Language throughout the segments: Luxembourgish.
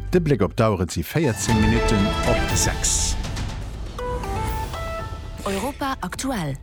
De Bléck op d'Auer, et si 14 Minutten op 6. Europa aktuell.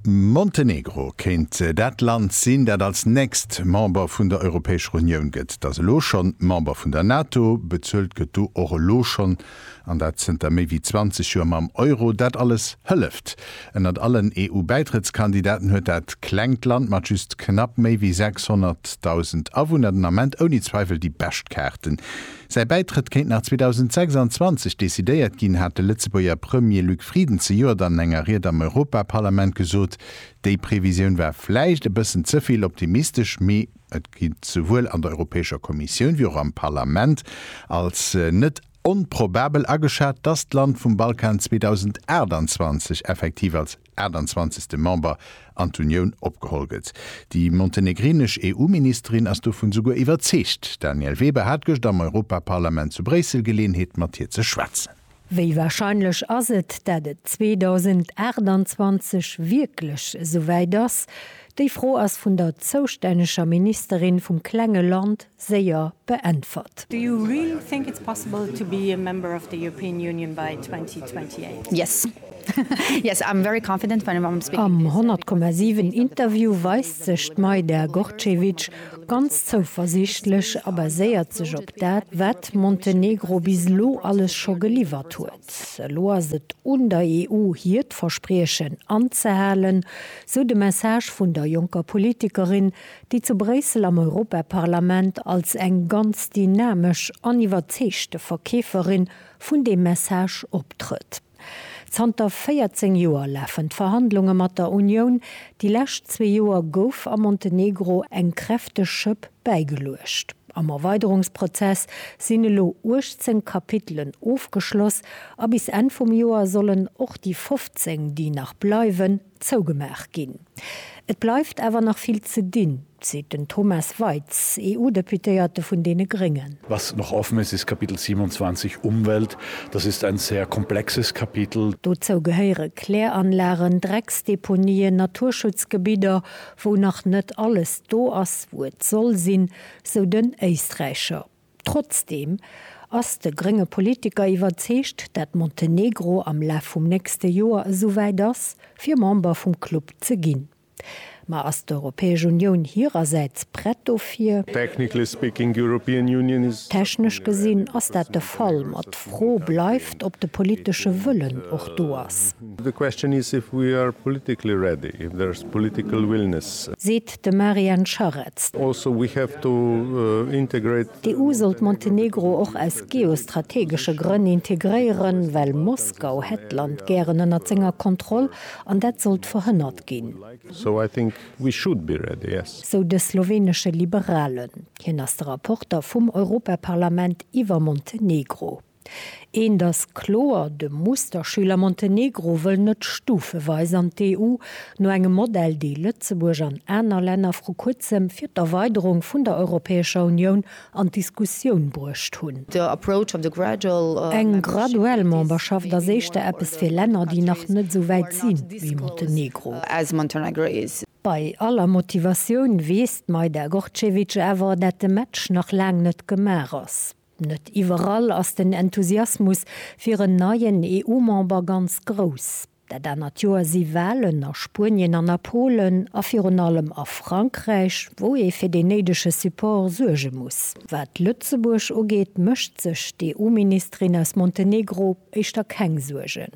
Montenegro kéint dat Land sinn, dat als nächst Member vun der Europäescher Unioun gëtt. Et ass elo schonn Member vun der NATO, bezuelt gëtt do och elo schonn. an dat zënter méi wéi 20 Joer mam Euro. Dat alles hëlleft. Ënnert allen EU-Bäitrëttskandidaten huet dat klengt Land mat just knapp méi wéi 600.000 Awunner den Ament ouni Zweiwel déi bescht Kaarten. Säi Bäitrëtt kéint nach 2026 decidéiert ginn, hat de Lëtzebuerger Premier Luc Frieden zejoert an enger Ried am Europaparlament gesot. Déi Previsioun war vläicht e bëssen ze vill optimistesch, mee Et gitt souwuel an der Europäescher Kommissioun wéi och am Parlament als net onprobabel ageschat, datt d'Land vum Balkan 2028 effektiv als 28. Member an d'Unioun opgeholl gëtt. Déi montenegrinesch EU-Ministerin ass dovun souguer iwwerzeegt. D'Danièle Weber hat gëscht am Europaparlament zu Bréissel Geleeënheet mat hir ze schwätzen. Wéi warscheinlech ass et, dat et 2028 wierklech esouwäit ass? Déi Fro ass vun der zoustänneger Ministerin vum klenge Land séier beäntwert. Do you really think it's possible to be a member of the European Union by 2028? Yes. Am 100,7 Interview weist sech d'Majda Gorcevic ganz zouversiichtlech a baséiert sech op dat, wat Montenegro bis elo alles scho geliwwert huet. Elo ass et un der EU hiert Verspriechen anzehalen, sou de Message vun der jonker Politikerin, déi zu Bréissel am Europaparlament als eng ganz dynamesch an iwwerzeegte Verkeeferin vun deem Message optrëtt. Zanter 14 Joer lafen d'Verhandlunge mat der Unioun. Déi lescht zwee Joer gouf am Montenegro eng kräfteg Schëpp bäigeluecht. Am Erweiderungsprozess sinn elo 18 Kapitelen ofgeschloss a bis Enn vum Joer sollen och déi 15, déi nach bleiwen, zougemaach ginn. Et bleift awer nach vill ze dinn, seet den Thomas Weitz, EU-Deputéierte vun deene Gréngen. Was noch offen ist, ist Kapitel 27, Umwelt. Das ist ein sehr komplexes Kapitel. Dozou gehéiere Kläranlagen, Drecksdeponien, Naturschutzgebidder, wou nach net alles do ass, wou et soll sinn, sou den Éisträicher. Trotzdeem ass de grénge Politiker iwwerzeegt, dat Montenegro am Laf vum nächste Joer esouwäit ass, fir Member vum Club ze ginn. Ma ass d'Europäesch Unioun hirersäits prett dofir? Technically speaking, European Union is. Technesch gesinn ass dat de Fall, ma d'Fro bleift, ob de politesche Wëllen och do ass. The question is if we are politically ready, if there's political willingness. De Marian Scharetz. D'EU sollt Montenegro och aus geostrategesche Grënn integréieren, well Moskau hätt d'Land gären ënnert senger Kontroll an dat sollt verhënnert ginn, sou de slowenesche Liberalen. Hien ass de Rapporter vum Europaparlament iwwer Montenegro. Eent ass kloer, de Musterschüler Montenegro wëll net stufeweis an d'EU, no engem Modell, dee Lëtzebuerg an aner Länner vru kuerzem fir d'Erweiderung vun der Europäescher Unioun an d'Diskussioun bruecht hunn. Eng graduell Memberschaft ass éischter eppes fir Länner, déi nach net esou wäit si wéi Montenegro. Bei aller Motivatioun weess d'Majda Gorcevic awer, dat de Match nach laang net gemaach ass. Net iwwerall ass den Enthusiasmus fir en neien EU-Member ganz grouss. Dat anert Joer si Walen a Spuenien an a Polen a virun allem a Frankräich, wou ee fir deen néidege Support suerge muss. Wat Lëtzebuerg ugeet, mécht sech d'EU-Ministerin aus Montenegro éischter keng Suergen.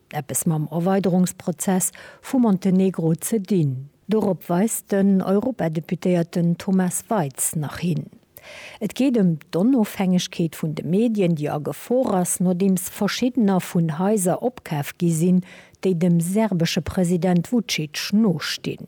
eppes mam Erweiderungsprozess vu Montenegro ze dinn. Dorop weist den Europadeputéierten Thomas Waitz nach hin. Et geet ëm d'Onofhängegkeet vun de Medien, déi a Gefor ass, nodeems verschiddener vun Haiser opkaf gi sinn, déi dem serbesche President Vucic nostinn.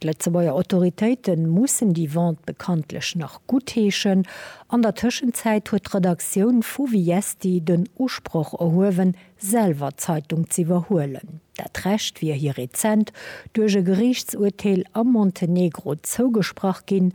D'Lëtzebuerger Autoritéite mussen déi Vente bekanntlech nach guttheeschen. An der Tëschenzäit huet d'Redaktioun vu Viesti den Usproch erhuewen, selwer d'Zeitung z'iwwerhuelen. Dat Recht wier hir rezent duerch e Geriichtsurteel am Montenegro zougesprach ginn.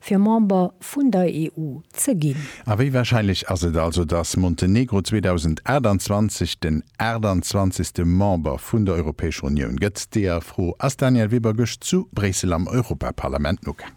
fir Member vun der EU ze ginn. A wéi warscheinlech ass et also, datt Montenegro 2028 den 28. Member vun der Europäescher Unioun gëtt? Deeër Fro ass Danièle Weber gëscht zu Bréissel am Europaparlament nogaang.